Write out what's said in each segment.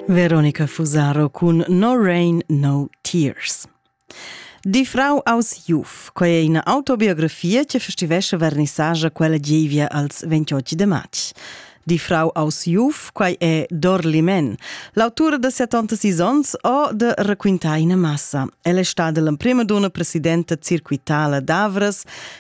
Veronica Fusaro cun No Rain, No Tears. Di Frau aus Juf, quai è ina autobiografia che festivesce vernissagia quella gievia als 28 de marz. Di Frau aus Juf, quai è Dorli Men, l'autura de 76 ans o de Raquintar in massa. Ella è stada l'emprima donna presidenta circuitala d'Avras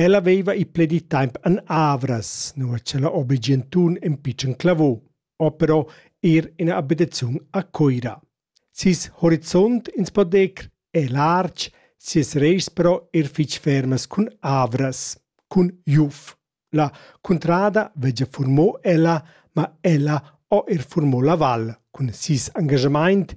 Ella veva ì pledì temps en Avras, nua ch'ella obeschien tun in pitschen clavò, o però er ina abitaziun a Cuira. Ses horizont ins po dir è lartg, sias raischs però er fitg fermas cun Avras, cun Juf. La cuntrada vegia furmò ella, ma ella ho er furmò la val cun ses engagamaint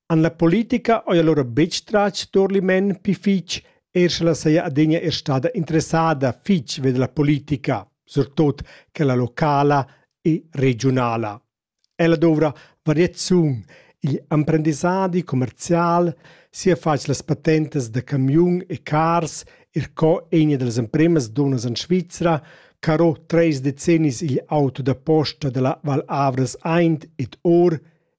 han la politica oia lura betg tratg Turlimen pi fitg, er sche la saja adegna er stada interessada fitg ved la politica, surtot quella locala e regionala. Ella dovra variaziun. Igl emprendissadi commercial sia fatg las patentes da camiun e cars, er co egna dals empremas donas en Svizra, caro treis decennis igl auto da posta della Val Avras aint et or,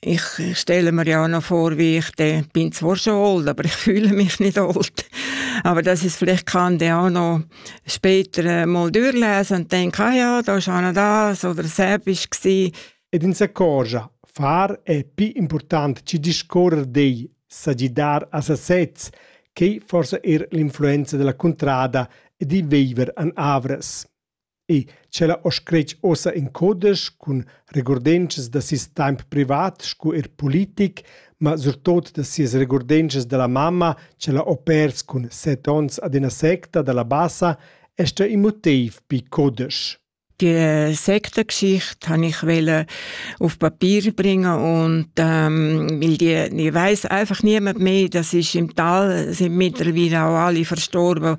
Ich stelle mir ja noch vor, wie ich den bin zwar schon alt, aber ich fühle mich nicht alt. Aber das ist, vielleicht kann der auch noch später mal durchlesen und denken, ah ja, da ist einer das oder Serbisch gewesen. Ed in s'accorgia, far è più importante ci discorrer dei sagidar a sasez, che forse er l'influenza della contrada e di viver an Avres. E sch'ella ho scret uossa in codesch cun regurdenschas da seis temp privat scu eir politic, ma surtot da sias regurdenschas da la mamma ch'ella ho pers cun set ons ad üna secta da la bassa, esta ün motiv pi codesch. Die Sektengeschichte habe ich wollen auf Papier bringen und ähm, weil die, die weiß einfach niemand mehr, das ist im Tal, sind mittlerweile auch alle verstorben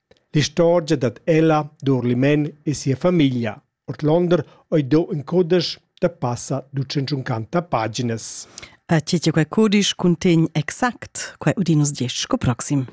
L'istorgia dad ella Durlimen e sia famiglia ordlonder ei do in cudisch da passa ducentschuncanta paginas. E tgi che quei cudisch cuntegn exact, quei udin nus diesch sco proxim.